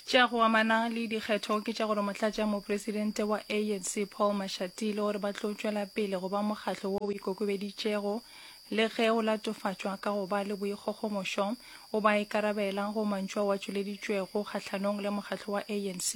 tša go amana le dikgetho ke tša gore motlatša mopresidente wa anc paul mashatile gore ba tlo tšwela pele go ba mokgatlo wo o ikokobeditšego le ge o latofatšwa ka go ba le boikgogomošo o ba ikarabela go mantšu a wa tšweleditšwego kgahlanong le mokgatlo wa anc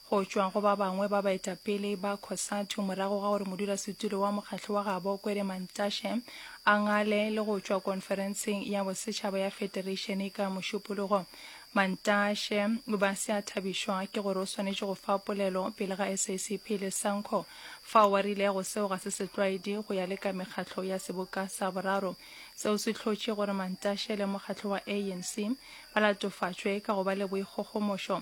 go tšwa go ba bangwe ba baetapele ba Cosatu morago ga gore modulasetulo wa mokgatlo wa gabo Kwere Mantashe a ngale le go tšwa konferenseng ya bosetšhaba ya federeišene ka mošupologo. Mantashe o ba se a thabišwa ke gore o swanetše go fa polelo pele ga SACP le Sanco fao wa rile go seo ga se setlwaedi go ya le ka mekgatlo ya seboka sa boraro. Seo se hlotše gore Mantashe le mokgatlo wa ANC ba latofatšwe ka go ba le boikgogomošo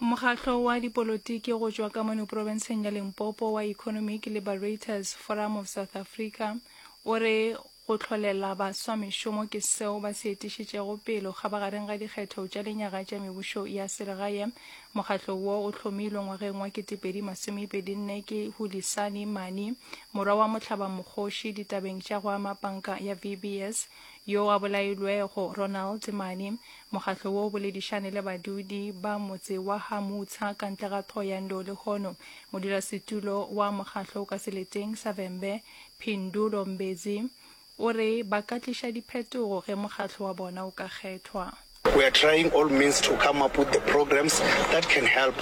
Mokgahlo wa dipolotiki go tšwa ka mono profenseng ya Limpopo wa Economic Liberators Forum of South Africa o re go tlholela baswa mešomo ke seo ba se etišitšego pelo kgabagareng ga dikgetho tša lenyaga tša mebušo ya selegae. Mokgahlo wo o hlomilwe ngwageng wa 2024 ke Hulisani Mani, morwa wa mohlaba mokgoši ditabeng tša go ama panka ya VBS, yo a bolailwego Ronald Mani, Mokgatlo wo o boledišane le badudi ba motse wa ha Mutsha ka ntle ga Thohoyandou lehono. Modulasetulo wa mokgatlo o ka seleteng sa Vhembe, Phindulo Mbedzi, o re ba ka tliša diphetogo ge mokgatlo wa bona o ka kgethwa. We are trying all means to come up with the programs that can help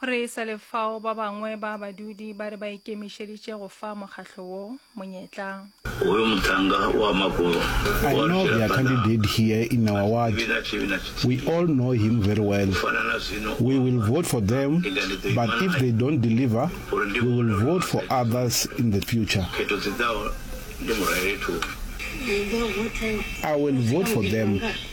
Re sa le fao, ba bangwe ba badudi ba re ba ikemišeditše go fa mokgatlo wo monyetla. I know their candidate here in our ward, we all know him very well, we will vote for them but if they don't deliver we will vote for others in the future. I will vote for them.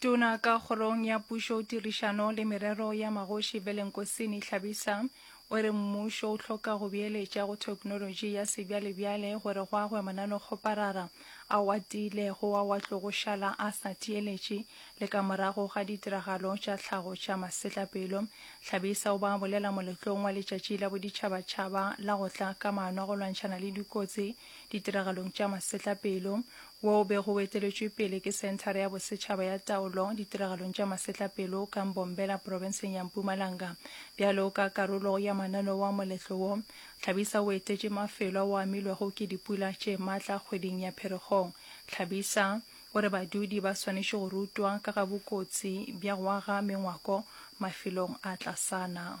Tona ka kgorong ya pušo, tirišano le merero ya magoši Velenkosini Hlabisa o re mmušo o hloka go beeletša go theknolotši ya sebjalebjale gore go agwe mananokgoparara ao a tiilego ao a tlogo šala a sa theeletše le ka morago ga ditiragalo tša tlhago tša masetlapelo. Hlabisa o ba a bolela moletlong wa letšatši la boditšhabatšhaba la go tla ka maano a go lwantšhana le dikotsi ditiragalong tša masetlapelo wo o bego o eteletšwe pele ke Senthara ya Bosetšhaba ya Taolo Ditiragalong tša Masetlapelo ka Mbombela profenseng ya Mpumalanga. Bjalo ka karolo ya mananeo wa moletlo wo, Tlhabisa o etetše mafelo ao a amilwego ke dipula tše matla kgweding ya Pherekgong. Tlhabisa o re badudi ba swanetše go rutwa ka ga bokotsi bja go aga mengwako mafelong a tlasana.